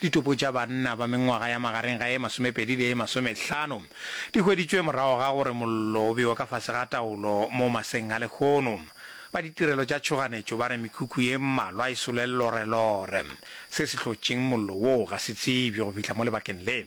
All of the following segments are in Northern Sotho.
Ditopo tša banna ba mengwaga ya magareng ga e masomepedi le e masomehlano di hweditšwe morago ga gore mollo o bewe ka fase ga taolo mo maseng a lehono. Ba ditirelo tša tšhoganetšo ba re mekhukhu ye mmalwa e sule llorelore. Se se hlotšeng mollo woo ga se tsebje go fihla mo lebakeng le.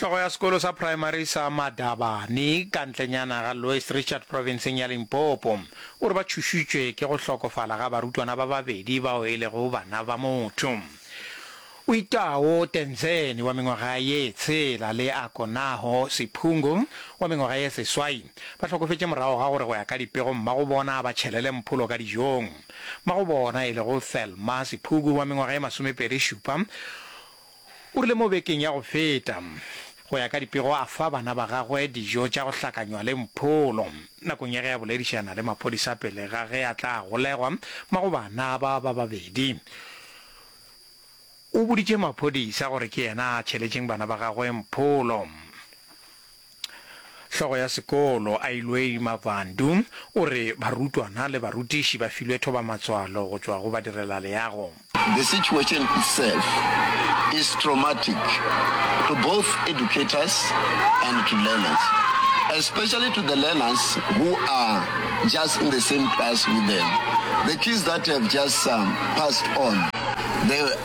Hlogo ya sekolo sa praemari sa Madabane, ka ntlenyana ga Louis Richard profenseng ya Limpopo, o re ba tšhošitšwe ke go hlokofala ga barutwana ba babedi bao e lego bana ba motho. Uitao Tenzeni wa mengwaga ye tshela le Akonaho Siphungu wa mengwaga ye seswai ba hlokofetše morago ga gore go ya ka dipego mmago bona ba tšhelele mpholo ka dijong. Mmago bona e lego Thelma Siphuku wa mengwaga ye masomepedi šupa, O rile mo bekeng ya go feta, go ya ka dipego a fa bana ba gagwe dijo tša go hlakanywa le mpholo nakong ya ge a boledišana le maphodisa pele ga ge a tla golegwa mago bana ba ba babedi. O boditše maphodisa gore ke yena a tšheletšeng bana ba gagwe mpholo. Hlogo ya sekolo, Ailwei Mavhandu, o re barutwana le barutiši ba filwe thobamatswalo go tšwa go badirelaleago. The situation itself is traumatic to both educators and to learners, especially to the learners who are just in the same class with them. The kids that have just passed on, they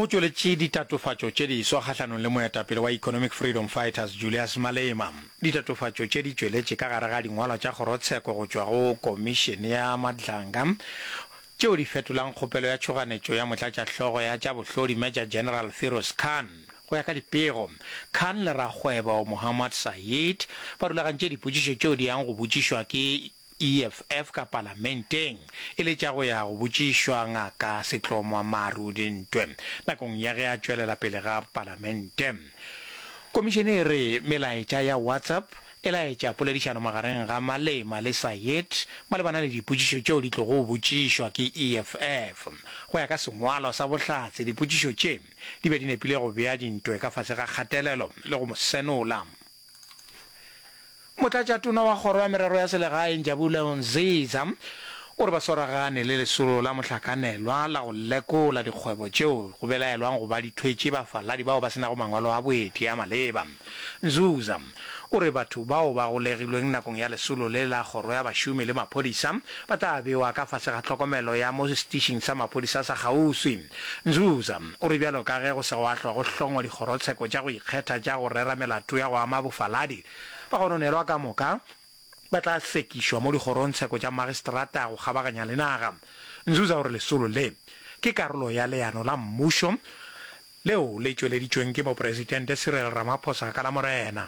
Go tšweletše ditatofatšo tše diswa kgahlanong le moetapele wa Economic Freedom Fighters Julius Malema. Ditatofatšo tše di tšweletše ka gare ga dingwalwa tša kgorotsheko go tšwa go Komišene ya Madlanga tšeo di fetolago kgopelo ya tšhoganetšo ya motlatšahlogo ya tša bohlodi Major General Firoz Khan. Go ya ka dipego, Khan le rakgwebo Mohammad Saeed ba rulagantše dipotšišo tšeo di yang go botšišwa ke EFF ka Palamenteng e le tša go ya go botšišwa Ngaka Setlomwa Maru dintwe nakong ya ge a tšwelela pele ga Palamente. Komišene e re melaetša ya WhatsApp e laetša poledišano magareng ga Malema le Sayed malebana le dipotšišo tšeo di tlogo botšišwa ke EFF. Go ya ka sengwalo sa bohlatse dipotšišo tše di be di nepile go bea dintwe ka fase ga kgatelelo le go mo senola. Motlatšatona wa Kgoro ya Merero ya Selegae Njabulelo Nziza o re ba swaragane le lesolo la mohlakanelwa la go lekola dikgwebo tšeo go belaelwang go ba di thwetše bafaladi bao ba se nago mangwalo a boeti a maleba. Nzuza o re batho bao ba golegilweng nakong ya lesolo le la Kgoro ya Bašomi le Maphodisa ba tla bewa ka fase ga tlhokomelo ya mo setišing sa maphodisa sa kgauswi. Nzuza o re bjalo ka ge go sego a hlwa go hlongwa dikgorotsheko tša go ikgetha tša go rera melato ya go ama bofaladi, bagononelwa ka moka ba tla hlwekišwa mo dikgorongtsheko tša magistrata go kgabaganya le naga. Nzuza o re lesolo le ke karolo ya leano la mmušo leo le tšweleditšweng ke Mopresidente Cyril Ramaphosa ka Lamorena.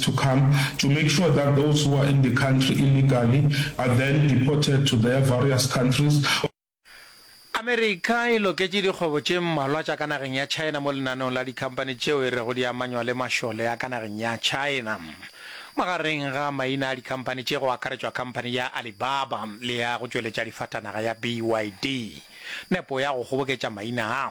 to come to make sure that those who are in the country illegally are then deported to their various countries or Amerika e loketše dikgwebo tše mmalwa tša ka nageng ya China mo lenaneong la dikhamphani tšeo e rego di amanywa le mašole a ka nageng ya China. Magareng ga maina a dikhamphani tše go akaretšwa khamphani ya Alibaba le ya go tšweletša difatanaga ya BYD. Nepo ya go kgoboketša maina a.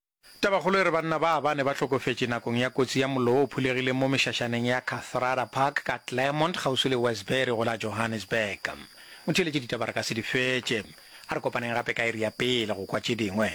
Tabakgolo e re banna ba bane ba hlokofetše nakong ya kotsi ya mollo wo o phulegileng mo mešašaneng ya Kathrada Park ka Claremont kgauswi le Westbury go la Johannesburg. Motheeletši ditaba re ka se di fetše. A re kopaneng gape ka iri ya pele go kwa tše dingwe.